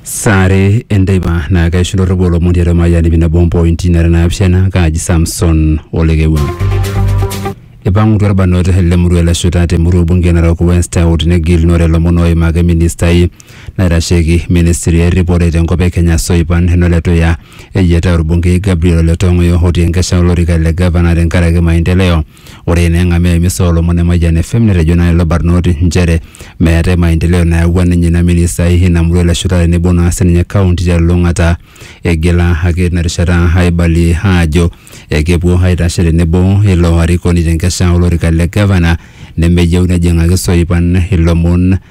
saare enteipa naa kaisho ndorropu olomon tiatua mayiani pi nabo ompointi nara naapishana kaaji samson olekewua ipang'utua irbanot le murua le shuta te murua bunge narok west out negilunore ilomon oimaki ministai naitasheki ministry erripore tenkop e kenya soipan Heno Letuya eyiataa orbungei Gabriel Ole Tong'oyo otii enkesha olorika le gavana tenkaraki maendeleo Ore naa eng'amia e misa oolomon e Mayian FM netejo naa lelo barnoti nchere meetae maendeleo nayawua ninye ina ministai ina murua ele shuta tenebo naa sininye kaunti telulung'ata. Eigila ake tina rishata aibalie aajo ekepuo aitashe tenebo ilo arikoni te nkesha olorika le gavana nemeyieu nejing'aki isoipan ilomon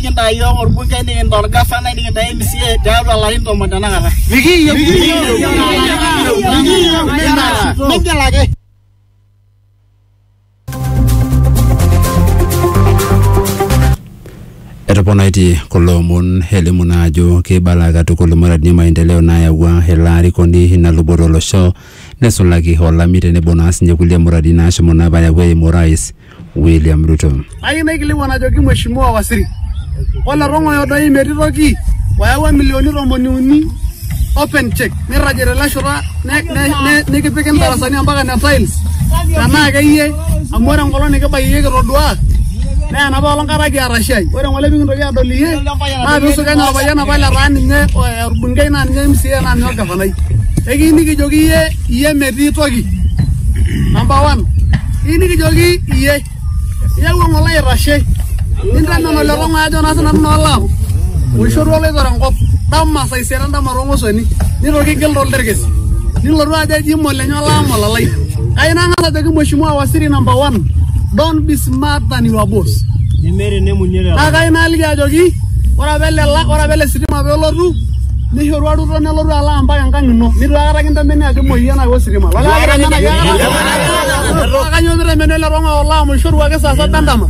nikintaa iyiook orbungei nikintaa orgafanai nikintaa MCA tiatua ilarin tomon tenakata. Mikiyieu migil ake. Etoponaitie kulo omon elimu naa ajo keibala katukul muradi e maendeleo naayawua ele arikoni ina luboto olosho nesulaki olami tenebo naa sinye kulie muradi naashomo naa apa ayau eimu orais William Ruto. Ayieu naikilikuan ajoki Mheshimiwa Waziri, ole tong'oyo doi metii toki oyawua milioni tomoni uni open check nirragie tele shoto ne- ne- ne- nikipiki ndarasani ampaka ne tiles tenaa akeyie amu ore enkolong nikibaiki iyie kitodua naa enapa olong kata kiata shai ore ng'ole pikintoki adol iyie naa piisukenya orpayian apa letaa ninye eh, orbungei naa ninye MCA naa ninye orgavanai ekiyieu nikijoki iyie iyie metii toki number one iyieu nikijoki iyie iyawua ng'ole aitashe nintamen ole tong'oe ajo naa sinanu naa olaam oishorua oloitore enkop dama saa isiet endama toong'osoni nitoki igil tolterkes nilotu ajo eji molenye olaam olalai kai nang'as ajoki mheshimiwa waziri number one don't be smart than your boss nemeeta enemunie lelo naa kai naaliki ajoki ore apa ele la- ore apa ele sitima pelotu Nishorua Ruto nelotu alo ampaka enkang ino. Nitu aikata kintemeni ajo imuoyie enaa ositima. Kanyoo pitemeni ele tung'ani olo amu ishorua ake saa saba endama.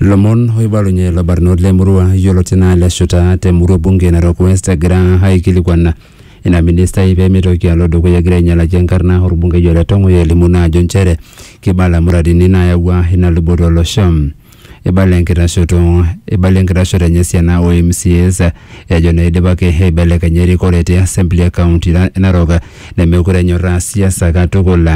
Lomon oibalunye labarnot le murua yioloti naa le shuta te murua bunge Narok West egira aikilikuan ina ministai pee mitoki alo dukuya egira ainyalaki enkarna orbungei ole Tong'oyo elimu naa ajo nchere kibala muradini naayawua ina luboto olosho. Eibala enkitashoto eibala enkitashoto enye esiana o MCAs ejo neidipaki aibelekenya erikore te assembly e county na- e Narok nemekure enyorraa siasa katukul.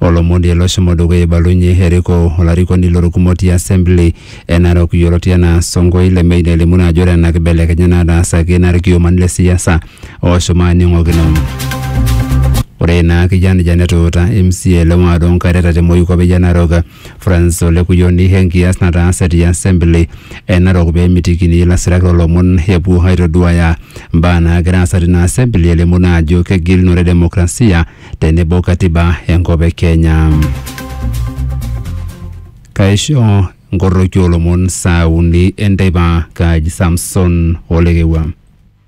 Olomoni ele oshomo dukuya eibalunye erikoo olarikoni lolkumok ti assembly e Narok yioloti anaa Sonko Ilemei nelimu naa ajo ore ena kibelekenya nataasaki naa ilkiomani le siasa oshomo aaning'okino. Ore ina kijanjan etuuta MCA le ward o Nkaireta te Moikwape e Narok Francis Ole Kuyoni enkias nataase te assembly e Narok pee emitikini ilasirak loolomon epuo aitoduaya mbaa naagira aasa tina assembly elimu naa ajo kegilunore demokrasia tenebo katiba enkop e Kenya. Kaisho nkorroki oolomon saa uni enteipa Kaji Samson Olekewua.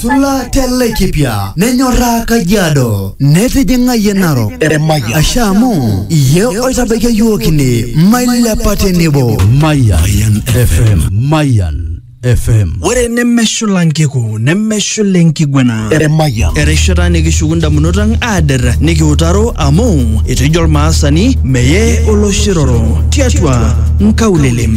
Sula te Laikipia nenyorraa Kajiado netijing'ayie Narok Eremaya. asha amu iye oitabaikia yiok ine mailepa tenebo Mayan FM. Mayan FM. Ore nemeshula nkiku nemeshula enkiguana. Eremaya. Erishata nikishuku ndamunot ang aader nikiutaro amu etejo Olmaasani meye oloshiroro tiatua nkaulele.